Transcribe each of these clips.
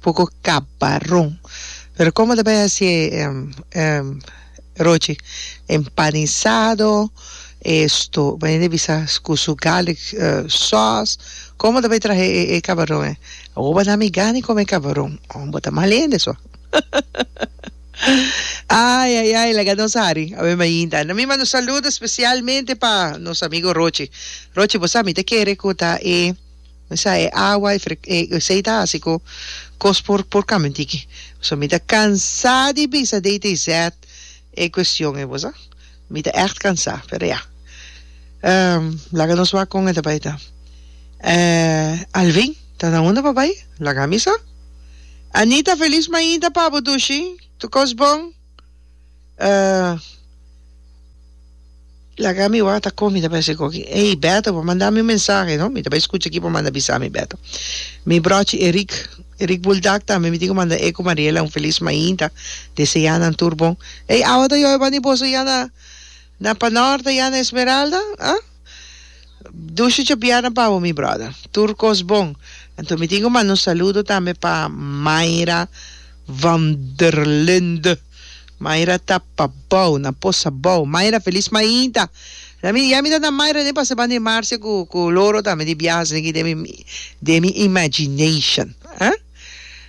Poko cabaron. Pero como ta bay haci e e rochi empanizado esto bay de bisa cu su garlic sauce como ta bay trahe e cabaron e awoba na mi gani come cabaron oh bo ta mal hende so ay ay ay laga nos hari awe mainta na mi mando saludo specialmente pa nos amigo rochi rochi bo sa mi ta kere cu ta e Mi sa e awa, e fre, e esei ta hasi ku kos por por kambia tiki. So mi ta kansá di bisa de te zet e kuestion ei, bo sa. Mi ta ègt kansá, pero ya. Laga nos wak kon e ta bai ta. Alvin, ta na unda bo bai? Laga mi sa. Anita, felis mainta pa bo dushi. Tu kos bon? Uh, laga mi wak ta kon, mi ta pensa e koki. Ey, Beto, por manda mi un mensahe, no? Mi ta bai skucha aki por manda bisa mi, Beto. Mi brochi Eric, Eric Buldak tambe, mi tin ke manda e ku Mariela un felis mainta, desea nan tur bon. Ey, awa ta yoi bani boso ya na, na Panorte, ya na Esmeralda? Ah? Dushi chapiana pa bo mi brother. Tur kos bon. Anto mi tin ku manda un saludo tambe pa Mayra van der Linde. Mayra ta pa bou, na posa bou. Mayra felis mainta. La mi ya mi ta na Mayra den pa se ban di Marcia ku ku Loro tambe di biaha sigi den mi den mi imagination. Eh?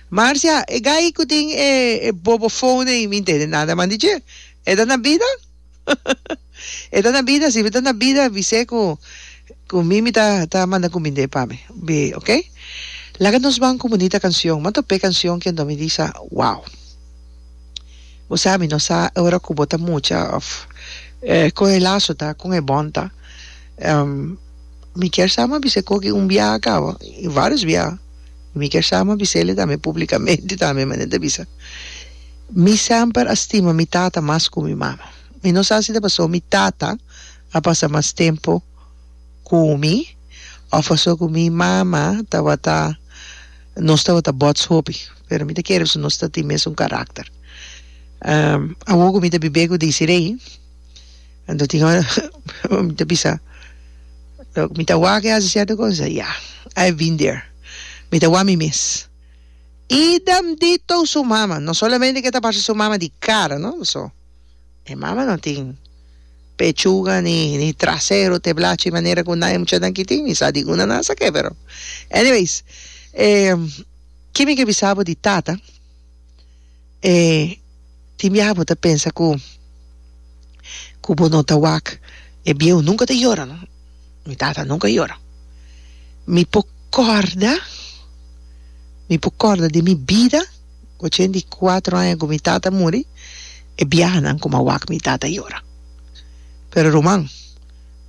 Marcia, e gai ku tin e e bobofon ei mi ntende nada man di dje. E ta na bida? E ta na bida si, mi ta na bida bis'é ku ku mi mi ta ta manda kumind'é pa mi. Bi, ok. Laga nos ban ku bunita kanshon. Manto p'e kanshon kendo mi di sa, wow. Bo sa mi no sa e ora ku bo ta mucha òf e kon e laso ta, kon e bòn ta. Mi kier sama bis'é koki un biaha kaba, i vários biaha. Mi kier sama bis'é li tambe públikamente tambe, manera ta bisa. Mi semper a stima mi tata mas ku mi mama. Mi no sa si ta pasó mi tata a pasa mas tempu ku mi òf pasó ku mi mama tabata nos tabata bòts hopi, pero mi ta kere pasobra nos ta tin mesun karakter. Awor ku mi ta bibé ku Desiree anto tin ora mi ta bisa mi ta wak hasi sierto kos? Ya, I have been there. Mi ta wak mi mes. Idem dito su mama, no solamente ke ta parse su mama di kara no so e mama no tin pechuga ni ni trasero te blachi manera ku naye muchanan ki tin mi sa di una nan sa ke pero anyways e ki mi ke bisa bo di tata. E tin biaha bo ta pensa ku ku bo no ta wak e bieu nunka ta yora no mi tata nunka yora mi por kòrda mi por kòrda den mi bida ochenta i kuatro aña ku mi tata muri e biahanan ku mi a wak mi tata yora pero ruman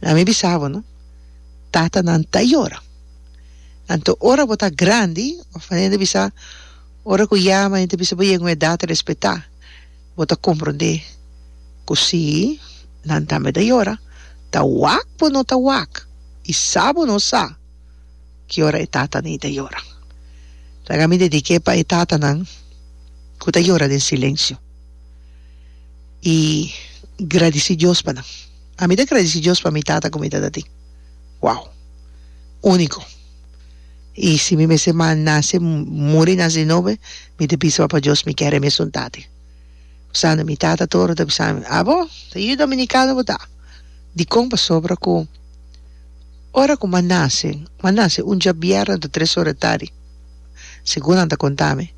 laga mi bisa bo no tatanan ta yora anto ora bo ta grandi of wèn e bisa Ora ku yama henter bisa bo yega un edat respetá, bo ta komprondé ku sí, nan tambe ta yora, ta wak bo no ta wak i sa bo no sa ki ora e tatanan ei ta yora. Laga mi dedik'é pa e tatanan ku ta yora den silensio i gradisí Dios pa nan. Ami ta gradisí Dios pa mi tata ku mi tatatin. Wow! Úniko. i si mi mester nase muri nase nobe mi ta bisa papa dios mi kere mesun tate pasobra mi tata tur ta bisami abo ta yu dominicano bo ta dikon pasobra ku ora ku mi nase mi nase un dia biernan ta tres ora di tardi segun nan ta kontami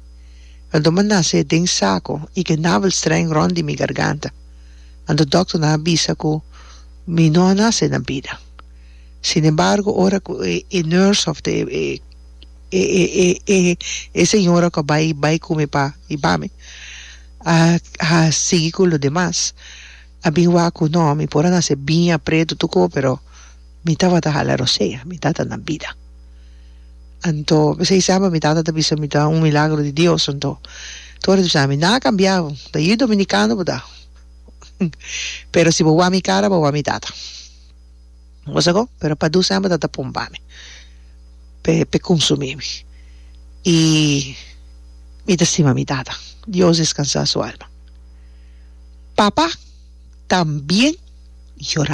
anto mi nase den sako i ke navel streng rond di mi garganta anto dòkternan a bisa ku mi no a nase na bida Sin embargo ora cu e e nurse of the e e e e e e señora cu a bay bay cu mi pa mi bami a a sigui cu lo demas a bin wak cu no mi por a nace bin apret tutu co pero mi tabata hala rosea mi tata na bida anto bisai semper mi tata ta bisa mi ta un milagro di Dios anto tur ora ta bisa ami na a cambia ta yu dominicano bo ta pero si bo wa mi cara bo wa mi tata. Bo sa ko? Pero pa dus hèmber ta ta pompa mi p'e p'e konsumí mi. I mi ta stima mi tata, Dios deskansá su alma. Papa también yorá.